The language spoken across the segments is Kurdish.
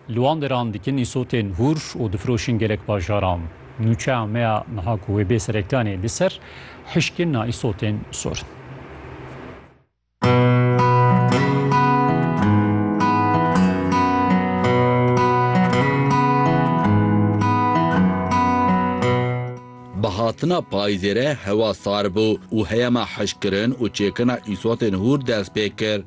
Li wan deran dikin îsotên hûr û difiroşin gelek bajaran. Nûçeya me ya niha ku wê bê sereklanê li ser hişkirina îsotên sorin. Bi hatina payîzê re hewa sar bû û heyema hişkirin û çêkirina îsotên hûr dest pê kir.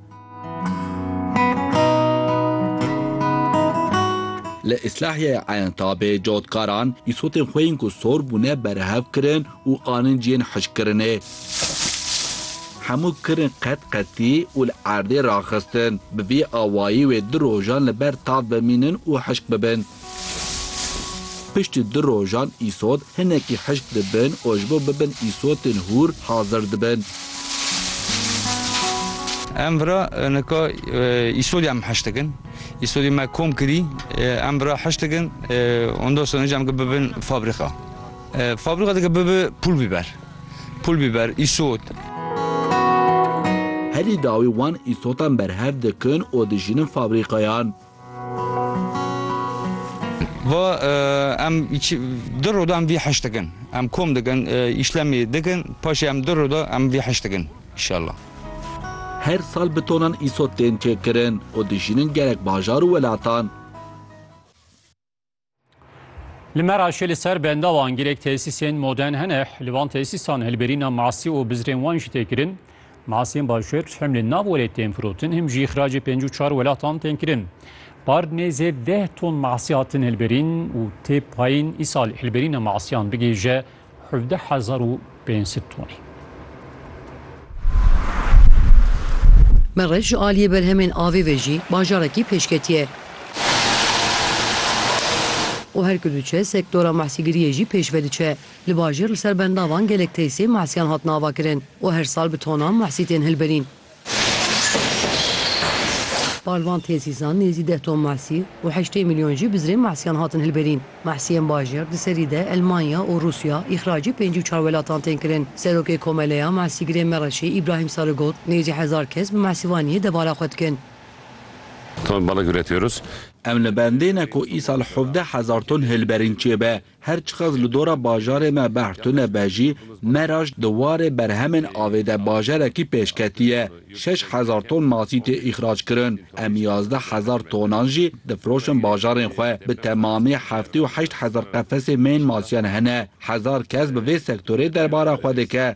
Li Îslahiyeya Eyntabê cotkaran îsotên xwe yên ku sor bûne berhev kirin û anin cihên hişkkirinê. Hemû kirin qet qetî û li erdê raxistin. Bi vî awayî wê du rojan li ber tav bimînin û hişk bibin. Piştî du rojan îsot hinekî hişk dibin û ji bo bibin îsotên hûr hazir dibin. Em vira nika îsodê em hişk dikin. Îsodê me kom kirî, em vira hişk dikin. Ondan sonra jî em dike bibin fabrîka. Fabrîka dike bibe pul bîber. Pul bîber, îsot. Herî dawî wan îsotan berhev dikin û dijînin fabrîkayan. Ve em du roda em vî heşt dikin. Em kom dikin, îşlemê dikin, paşê em du roda em vî heşt dikin înşallah. Her sal bi tonan îsot tên çêkirin û dijînin gerek bajar û welatan. Li Meraşê li ser benda wan girek tesîsên modern hene. Li van tesîsan hilberîna masî û bizrên wan jî tê kirin. Masiyên başûr him li nav welêt tên firotin him jî xiracê pêncî û çar welatan tên kirin. Par nêzê deh ton masî hatin hilberîn û tê payîn îsal hilberîna masiyan bigihîje Hevdeh hezar û pênc sed tonê. Merij ji aliyê berhemên avê ve jî bajarekî pêşketiye û her ku diçe sektora mahsîgiriyê jî pêş ve diçe. Li bajêr li ser benda van gelek teysê mahsiyan hatin avakirin û her sal bi tonan mahsî tên hilberîn. Balvan Têzîzan nêzî deh ton mahsî û heştê milyon jî bi zirê mahsîyan hatin hilberîn. Mahsîyên bajêr di serî de Elmanya û Rûsya îxracî pêncî û çar welatan tên kirin. Serokê Komeleya Mahsîgirên Mereşê Îbrahîm Sarı got, Nêzî hezar kes bi mahsîvaniyê debala xwe dikin. Ton balık üretiyoruz. Em li bendê ne ku îsal hevdeh hezar ton hilberîn çêbe. Her çiqas li dora bajarê me behr tune be jî, Meraş di warê berhemên avê de bajarekî pêşketî ye. Şeş hezar ton masî tê îxrac kirin. Em yazdeh hezar tonan jî difiroşin bajarên xwe. Bi temamî heftê û heşt hezar qefesê mêyên masiyan hene. Hezar kes bi vê sektorê derbara xwe dike.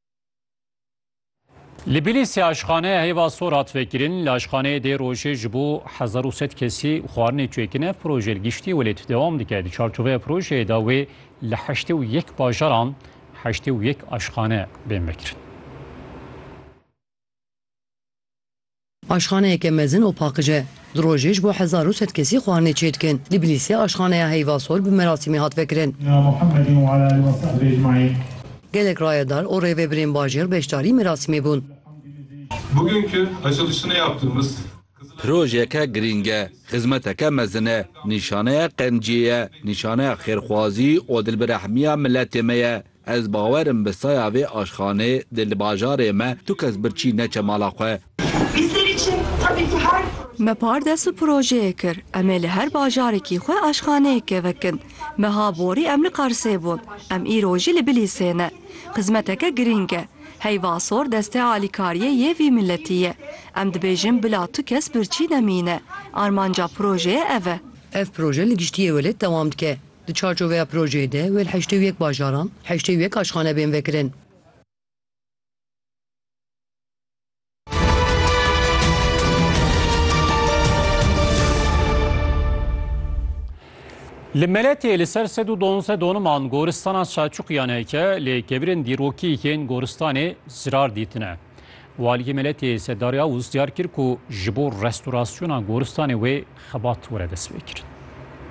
Li Bîlîsê aşxaneya hêva sor hat vekirin. Li aşxaneyê dê rojê ji bo hezar û sed kesî xwarinê çêkin. Ev proje li giştî welêt dewam dike. Di çarçoveya projeyê de wê li heştê û yek bajaran heştê û yek aşxane bên vekirin. Aşxaneyeke mezin û paqij e. Di rojê ji bo hezar û sed kesî xwarinê çêdikin. Li Bilîsê aşxaneya Heyvasor bi merasîmê hat vekirin. Gelek rayedar û rêvebirên bajêr beşdarî merasîmê bûn. Projeyeke girîng e, xizmeteke mezin e, nîşaneya qenciyê ye, nîşaneya xêrxwazî û dilbirehmiya miletê me ye. Ez bawer im bi saya vê aşxanê de li bajarê me tu kes birçî neçe mala xwe. Me pardes û projeyê kir em ê li her bajarekî xwe aşxaneyeke vekin. Meha borî em li Qersê bûn, em îro jî li Bilîsê ne. Xizmeteke girîng e. Heyva sor destê alîkariyê yê vî miletî ye. Em dibêjin bila tu kes birçî nemîne. Armanca projeyê ev e. Ev proje li giştî yê welêt dewam dike. Di çarçoveya projeyê de wê li heştê û yek bajaran heştê û yek aşxane bên vekirin. Li Meletê li ser sed û donzdeh doniman goristana Selçuqiyan heke lê kevirên dîrokî yên goristanê zirar dîtine. Waliyê Meletê Sedar Yavuz diyar kir ku ji bo restorasyona goristanê wê xebat were destpêkirin.